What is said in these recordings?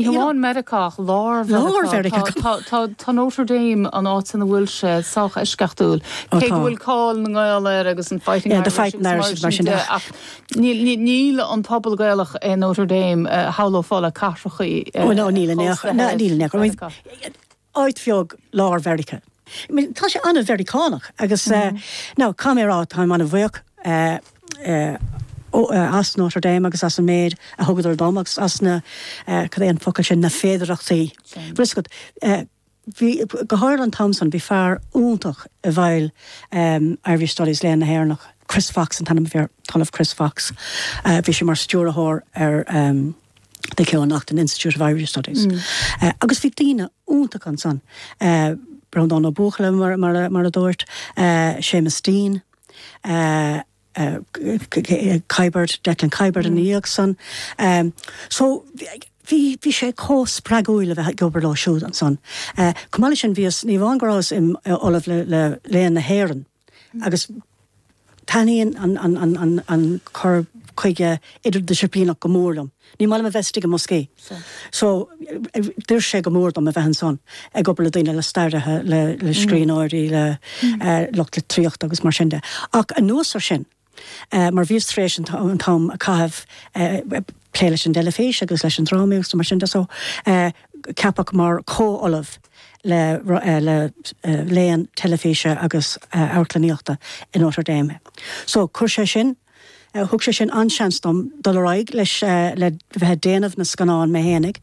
Ní hamháin Meiriceá, lár Mheiriceá. Tá Notre Dame, an áit ina bhfuil sé, sách eisceachtúil, cé go bhfuil cáil na nGael air agus an Fighting Irish agus mar sin de. Ach níl an pobal Gaelach i Notre Dame, shamhlófá, le cathracha. Ó, níl. Níl. Áit bheag lár Mheiriceá. Tá sé an-Mheiriceánach agus now caithfidh mé a rá táim an-bhuíoch as Notre Dame agus as an méid a thugadar dom agus as na, cad é an focal sin, na féidearthachtaí. Sin. Bhfuil a fhios agat. Bhí, go háirithe an t-am san, bhí fear iontach i bhfeighil Irish Studies, Léann na hÉireannach, Chris Fox an t-ainm a bhí air, an tOllamh Chris Fox. Bhí sé mar stiúrthóir ar. Keough-Naughton Institute of Irish Studies. Agus bhí daoine iontacha ansan, Breandán Ó Buachalla, mar a dúirt, Seamus Deane, Kiberd, Declan Kiberd ina dhiaidh san. So, bhí sé chomh spreagúil a bheith ag obair leo siúd ansan. Chomh maith leis sin, bhíos, ní amháin go rabhas im Ollamh le Léann na hÉireann, agus taitníonn an cur chuige idirdhisciplíneach go mór liom. Ní maith liom a bheith istigh i mboscaí, so d'oir sé go mór dom a bheith ansan ag obair le daoine, le staraithe, le scríbhneoirí, le lucht litríochta agus mar sin de. Ach anuas air sin. mar bhíos tar éis an t-am a chaitheamh ag plé leis an dteilifís agus leis an drámaíocht agus mar sin de so ceapadh mar chomhollamh le léann teilifíse agus amharclannaíochta i Notre Dame mé. So chuir sé sin, thug sé sin an-seans dom dul ar aghaidh leis, le bheith ag déanamh na scannán mé fhéinig.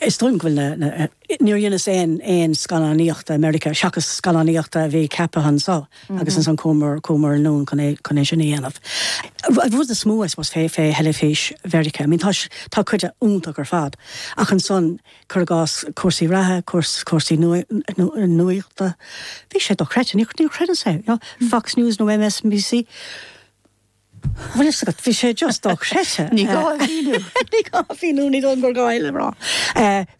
Is dóigh liom go bhfuil na. Níor dheineas aon scannánaíocht i Meiriceá seachas scannánaíocht a bhí ceaptha anseo agus ansan chuamar anonn chun é sin a dhéanamh. An rud is mó I suppose fé theilifís Mheiriceá, I mean tá tá cuid de iontach ar fad ach ansan cur i gcás cúrsaí reatha, cúrsaí nuachta, bhí sé dochreidte, níor chreideas é, you know, Fox News nó MSNBC. Bhfuil a fhios agat, bhí sé just dochreidte. Ní gá a mhíniú. Ní gá a mhíniú, ní dóigh gur gá uile rá.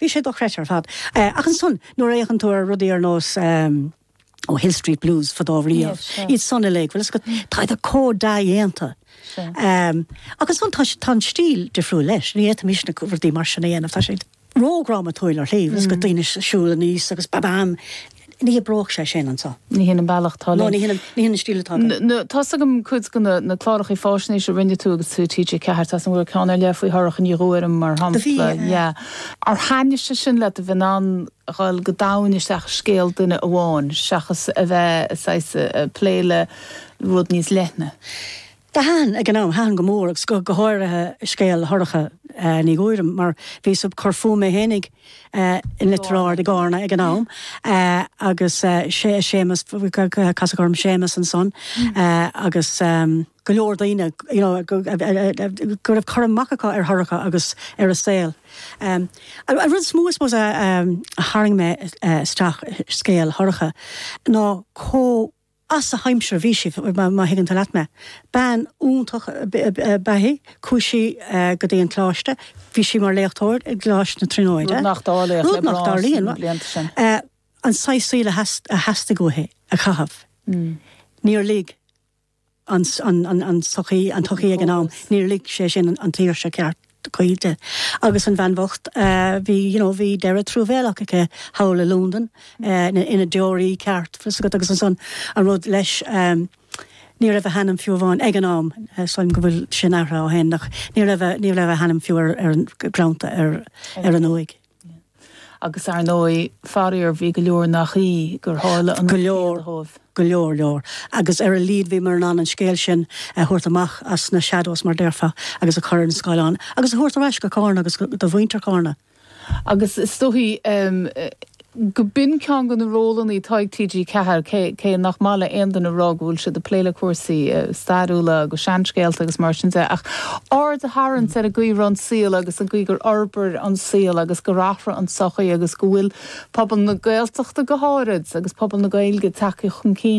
Bhí sé dochreidte ar fad. Ach ansan, nuair a fhéachann tú ar rudaí ar nós, ó, Hill Street Blues, fadó riamh, iad san uilig, bhfuil a fhios agat, táid chomh dea-dhéanta. Ach ansan, tá an stíl difriúil leis. Ní fhéadfaimis na rudaí mar sin a dhéanamh, tá sé. ródhrámatúil ar shlí, bhfuil a fhios agat, daoine ag siúl aníos agus ba bam! Ní oibreodh sé sin anseo. Ní hin an bealach atá linn. Ná ní hin an stíl atá againn. Tá's agam cuid de na cláracha fáisnéise a rinne tú agus tú i TG4, tá's agam go raibh ceann ar leith faoi Shorcha Ní Ghuairim mar shampla. Do bhí, yeah. Ar thaitnigh sé sin leat, a bheith in ann a dhul go domhain isteach i scéal duine amháin seachas a bheith, saghas, ag plé le rud níos leithne? Thaitin, ag an am, thaitin go mór agus go háirithe scéal Shorcha Ní Ghuairim mar bhí mé ag cur fúm mé fhéinig i Leitir Ard i gCarna ag an am agus sé, Séamus, casadh orm Séamus ansan agus go leor daoine you know go raibh cur amach acu ar Shorcha agus ar a saol. An rud is mó I suppose a tharraing mé isteach i scéal Shorcha ná chomh, as a haimsir bhí sí, má thuigeann tú leat mé, bean iontach ab ea í, chuaigh sí go dtí an coláiste, bhí sí mar léachtóir i gColáiste na Tríonóide, rud nach dtarlaíonn, an saghas saoil a theastaigh uaithi a chaitheamh, níor lig an tsochaí, an tsochaí ag an am, níor lig sé sin an tsaoirse ceart. di agus an bhean bhocht bhí you know bhí deireadh truamhéalach aici thall i Londain eh ina deoraí ceart fios agat agus ansan an rud leis ehm ní raibh a hainm fiú amháin ag an am eh sílim go bhfuil sin athraithe ó shin ach ní raibh a ní raibh a hainm fiú ar ar an greannta ar ar an uaigh. Agus ar ndóigh, faraor, bhí go leor nach í gur tharla an rud céanna dhóibh. Go leor, go leor, leor. Agus ar a laghad bhíomar in ann an scéal sin a thabhairt amach as na shadows, mar déarfá, agus a chur ar an scáileán agus a thabhairt ar ais go Carna agus do mhuintir Charna. Agus is dóichí go b'in ceann de na rólanna atá ag TG4, cé nach maith le haon duine a rá go bhfuil siad ag plé le cúrsaí stairiúla agus seanscéalta agus mar sin de, ach. aird a tharraingt ar an gcaoi a raibh an saol agus an chaoi gur fhorbair an saol agus gur athraigh an sochaí agus go bhfuil pobal na Gaeltachta go háirid agus pobal na Gaeilge ag teacht chun cinn